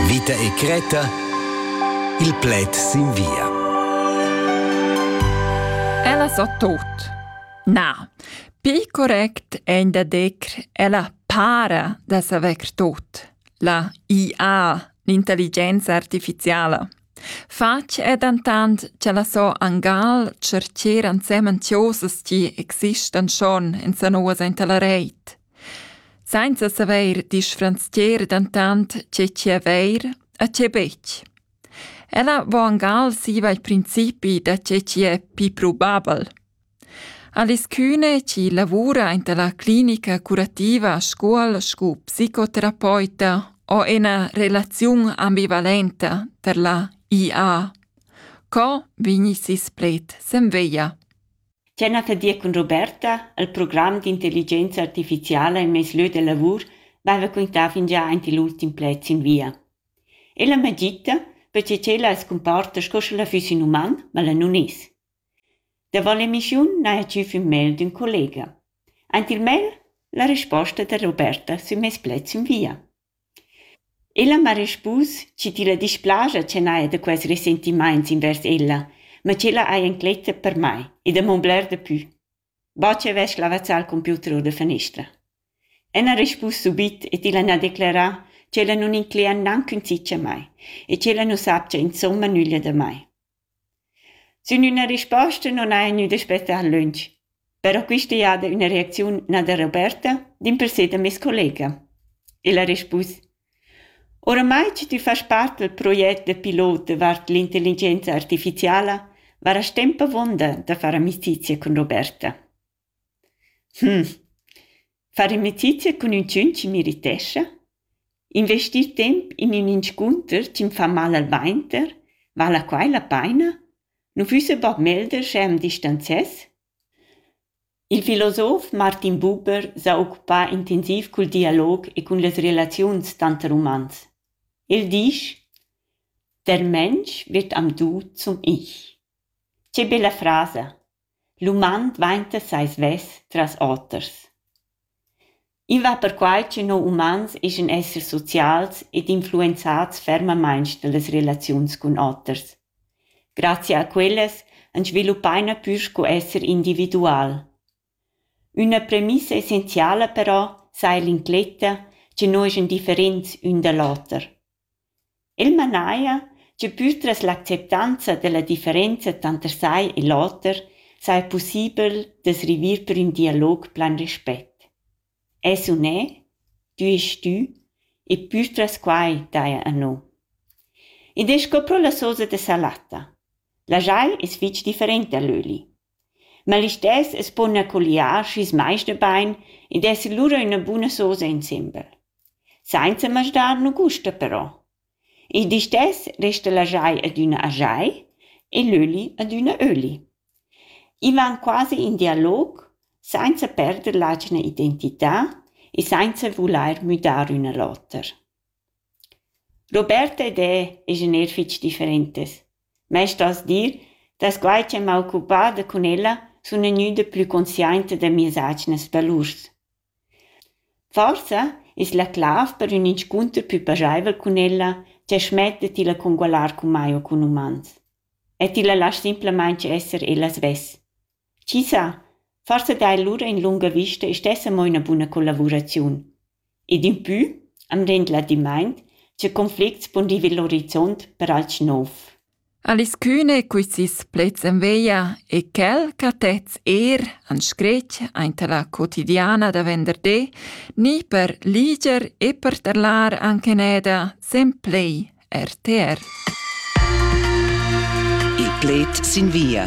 Vita e cretta Il pled sin via. Ella sa tot. Na, pi correct è da decr ella para da saver tot. La IA, l'intelligenza artificiala. Fatg è dentant che la so angal cercer ansemen tiosas ti existan schon in sanoas inta la reit. Sainza savair disfranzcher dentant tge chi avair e tge betg. Ella vo angal siva il principi da tge chi è pii probabel. Alischüne, chi lavura aint la clinica curativa Scuol scu psicoterapeuta, ho ena relaziun ambivalenta tar la IA. Co vegni sis pled sen veia? Tgena che dir cun Roberta, el program d'intelligenza artificiala en mes lieu de lavur veva quintà fingià aint igl ultim pled sin via. Ella m'ha gita, perche ch'ella as cumporta sco sch'ella füss ün uman, ma ella nun es. Davo l'emissiun n'haja tgü fin mail d'ün collega. Aint il mail la resposta da Roberta sün meis pled sün via. Ella m'ha respus chi tilla displaja ch'el haja da quels resentimaints invers ella, ma ch'ella haja incletta per mai e da m'on bler dapü, bod chi avess lavazzà il computer our da fanestra. Ella ha respus subit e tilla n'ha declerà ch'ella nun inclegia gnanc ün tschich a mai e ch'ella nu sapcha insomma nüglia da mai. Sün üna risposta non haja gnü daspettà lönch. Però quista jada üna reacziun na da Roberta, dimpersè da meis collega. El ha rispus: «Oramai chi tü fast part dal proget da pilot davart l'intelligenza artificiala, varast temp avuonda da far amicizia cun Roberta.» Far amicizia cun üntschun chi m'irritescha, investir temp in ün inscunter chi'm fa mal al vainter, vala quai la paina? Nu füssa bod meglder sche am distanzess? Il filosof Martin Buber s'ha occupà intensiv cul dialog e cun las relaziuns tanter umans. El disch: Der Mensch wird am Du zum Ich. Che bella frasa! L'uman dvainta sai svess tras oters. I va perquai ch'ün ho umans eschan essers socials ed influenzats fermamaing da las relaziuns cun oters. Grazia a quellas ans sviluppaina pür sco esser individual. Üna premissa essenziala però saja l'incletta cha no eschan differents ün da l'oter. El manaja che pür tras l'acceptanza dalla differenza tanter sai e l'oter saja pussibel da's river per ün dialog plan respet. Es u ne, tü est tü e pür tras quai daja a no. Id es sco pro la sosa da salata. La jai es fich different da l'öli. Ma listess as pona colliar schi's maista bain ed esser lura üna buna sosa insembel. Sainza masdar nu gusta però. Il di stess resta la jai adüna a jai e l'öli adüna öli. I van quasi in dialog, sainza perder l'atgna identità e sainza vulair müdar üna l'oter. Roberta ed e esen eir fich differentes. mei stos dir dass quai che m'ha occupada cun ella sun gnüda plü consciainta da mias atgnas valurs. Forsa es la clav per ün inscunter pü pajaivel cun ella cha schmetta tilla congualar cun mai o cun umans. E tilla lasch simplamaing esser ella svess. Chi sa, forsa daja lura in lunga vista e stessa mo üna buna collavuraziun. Ed impü am rend ladimaint cha conflicts pon river l'orizont per alch nouv. Alice Kühne quist sis plets en veglia e quel ch'ha tets eir an scretg aint la quotidiana da venderdi ni per liger e per terlar anche neda sen play RTR. Il pled sin via.